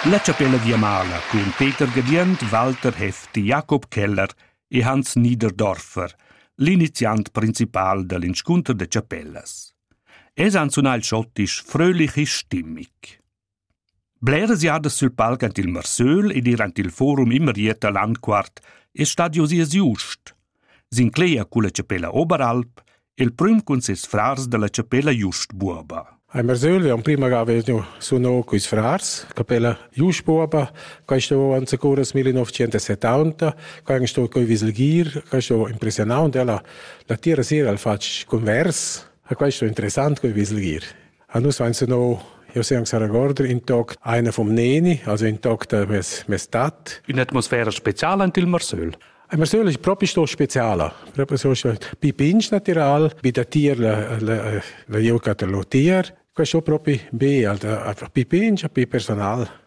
La chapella viamala cun Peter Gadient, Walter Hefti, Jakob Keller e Hans Niederdorfer, l'iniziant principal da l'inscunter da chapellas. Es han sunà il schottisch fröhlich e stimmig. Bleras jadas sül palc ant il Marsöl ed ir ant il forum immer Ieta Landquart è stadio sias just. S'inclegia culla chapella Oberalp il prüm cun ses frars dalla chapella Just Buoba. A Mersöl en prima ga vedo suno quis frars, capella Just Buoba, quaista vo an securas 1970, quai è sto coi viselgir, quaista vo impressionant, ella la tira sera al fatg convers, a quaista interessant coi viselgir. Ah, nus veins no, io se anche regorder in toc einer vom Neni, also in toc da mes, mes tat. Un'atmosfera speciale ant il Marsöl. Il Marsöl è proprio sto speciale, proprio so pi pinch natural, bi da tier la, la, la gioca ter lo tier. Questo è proprio be, pi pinch, pi personal.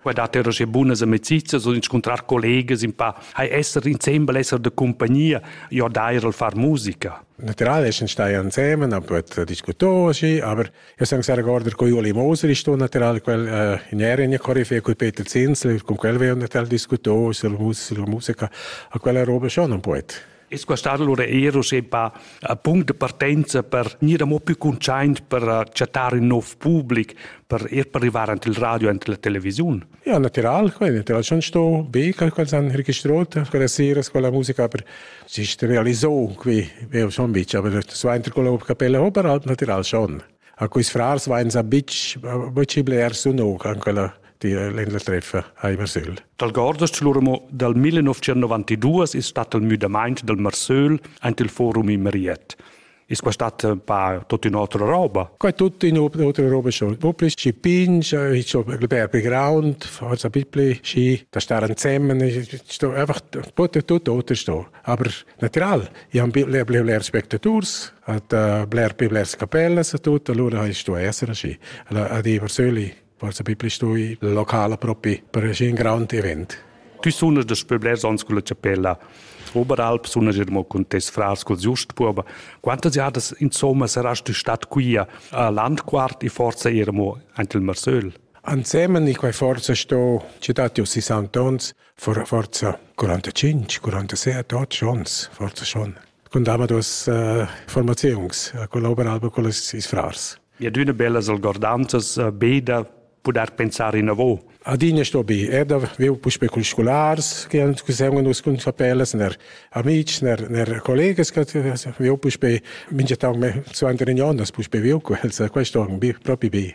Qua dat er sche bunas amicizias und incontrar collegas in pa hai esser insembel esser de compagnia jo dair al far musica. Naturale ist stai ansemen, aber diskutor si, aber io sang sehr gorder co Juli Moser ist tu natural quel äh, in Erien Koryphäe col Peter Zinsel, con quel veo natural diskutor, sul musica, a quella roba schon un poet. E squastar lura er uschè pa punct de partenza per gnir amo più conscient per chattar ün nov public, per ir per arrivar ant il radio ant la televisiun. Ja, natural, quel natural schon sto be quel quels han registrot quella sera con la musica per sich realisò qui, veo schon bicha, aber so entro con la capella ho per alp natural schon. A quis frars vainsa bitch bitch blers sun o an quella di l'Insel Treffa a Marsöl. Dal Gordas lura mo dal 1992 is stat il müdamaint dal Marsöl ant il forum in Mariette. Is quastat pa tot in otra roba? Quai tut in otra roba schon. Popli ci pinch, ich so per ground, forza bipli, ci da star ansemmen, sto einfach tot tot otra sto. Aber natural, i han bler, bler, bler spectators, hat uh, bler più blers capellas e tutto, allora hai stu essere asci. Allora, a di persöli, forse più stui locale proprio per un grande event. Tu sono das Pöbler sonst con la chapella Oberalp, sono er mo con tes frars col giust puoba. Quantas jadas insomma saras tu stat qui a Landquart e forse ermo anche il Marsöl? Ansemen, ich war forse sto cittati aus Santons, For forza 45, 47, 8 schons, forza schon. Con dava dos uh, formaziuns, a collaborava con ils frars. Ja, d'una bellas algordanzas uh, be da poder pensar inavo. Adina sto bi, er da viu puspe cun scolars che han kusem nus cun fapelas ner amics ner ner collegas che viu puspe minge tag me zu an riunion das puspe viu quels questo bi propi bi.